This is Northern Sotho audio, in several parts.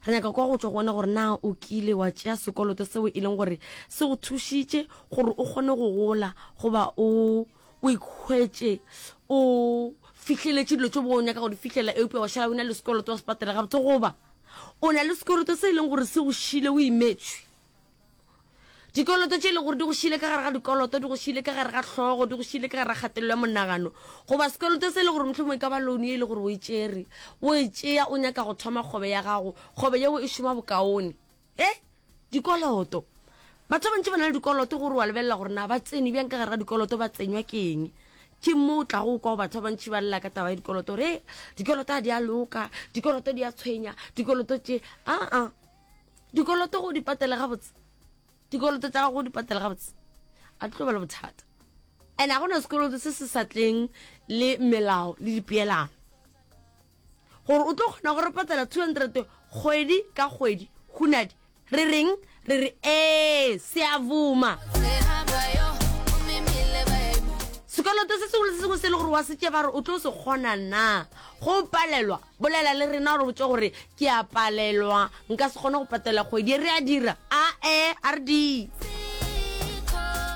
Re nyaka kwa go tšwa go wena gore na o kile wa tšea sekoloto seo e leng gore se go thušitše gore o kgone go gola goba o o ikhwetše o fihleletše dilo tšeo bo o nyaka go di fihlelela eupša wa šala o na le sekoloto wa se patela gabotse goba o na le sekoloto se e leng gore se go šile o imetšwe. dikoloto tše e le gore di go šile ka gare ga dikoloto di go šile ka gare ga hlogo di go šile ka gare ga kgatelelo ya monagano goba sekoloto se e le gore mohlomong e ka ba loan e le gore o e tšere o e tšea o nyaka go thoma kgobe ya gago kgobe yeo e šoma bokaone e dikoloto batho ba bantši ba na le dikoloto gore wa lebelela gore na ba tsene bjang ka gare ga dikoloto ba tsenywa ke eng ke moo tla go kwa batho ba bantši ba lela ka taba ya dikoloto gore dikoloto ga di a loka dikoloto di a tshwenya dikoloto tše aa dikoloto go di patele gabotse dikoloto tsa gago go di patele gabotse a tlo ba le bothata and ga gona sekoloto se se sa tleng le melao le dipeelano gore o tlo kgona gore patela 200 kgwedi ka kgwedi hunadi re reng re re ee se a vuma sekoloto se sengwe le se sengwe se e le gore wa setse ba re o tlo se kgona na go palelwa Bolela le rena o re botše gore, Ke a palelwa. Nka se kgone go patela kgwedi e. Re a dira? A-e, a re di.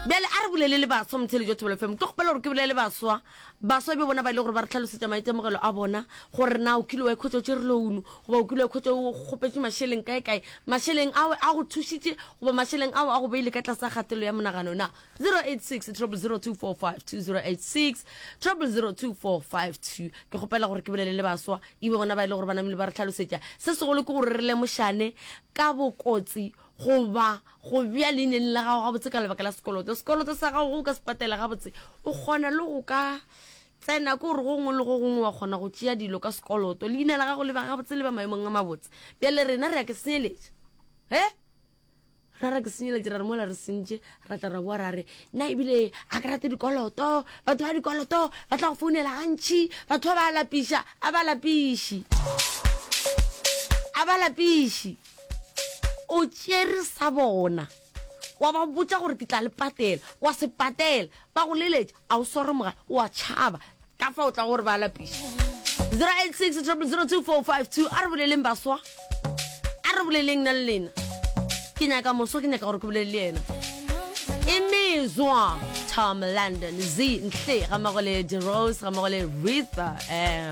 Bjale a re bulele le baswa motheletši wa Thobela FM. Ke kgopela gore ke bolele le baswa. Baswa bjo bona ba e le gore ba re tlhalosetša maitemogelo a bona gore na o kile wa ikhwetša o tšere lounu goba o kile wa ikhwetša o kgopetše mašeleng kae-kae. Mašeleng ao a go thušitše goba mašeleng ao a go beile ka tlase ga kgatelelo ya monagano na? 0860002452 ke kgopela gore ke bolele le baswa e be bona ba e le gore ba namile ba re tlhalosetša se segolo ke gore re lemošane ka bokotsi goba go bja leineng la gago gabotse ka lebaka la sekoloto sekoloto sa gago go ka se patela gabotse o kgona le go ka tsena ke gore go gongwe le go gongwe wa kgona go tšea dilo ka sekoloto leina la gago le ba gabotse le ba maemong a mabotse bjale rena re ya ke senyeletša he ra ra ke senyeletše ra re mola re sentše ra tla ra boa ra re nna ebile a ke rate dikoloto batho ba dikoloto ba tla go founela gantšhi batho ba ba lapiša a ba lapiši a ba lapiši o tšere sa bona wa ba botsa gore ke tla le patela wa se patela ba go leletša a o sware mogala wa tšhaba ka fa o tla gore ba lapiša 086 02452 a re boleleng baswa a re boleleng na le lena ke nyaka moswa ke nyaka gore ke bolele le ena imizwa tom london z ntle ga mago le derose ga mago le ritha um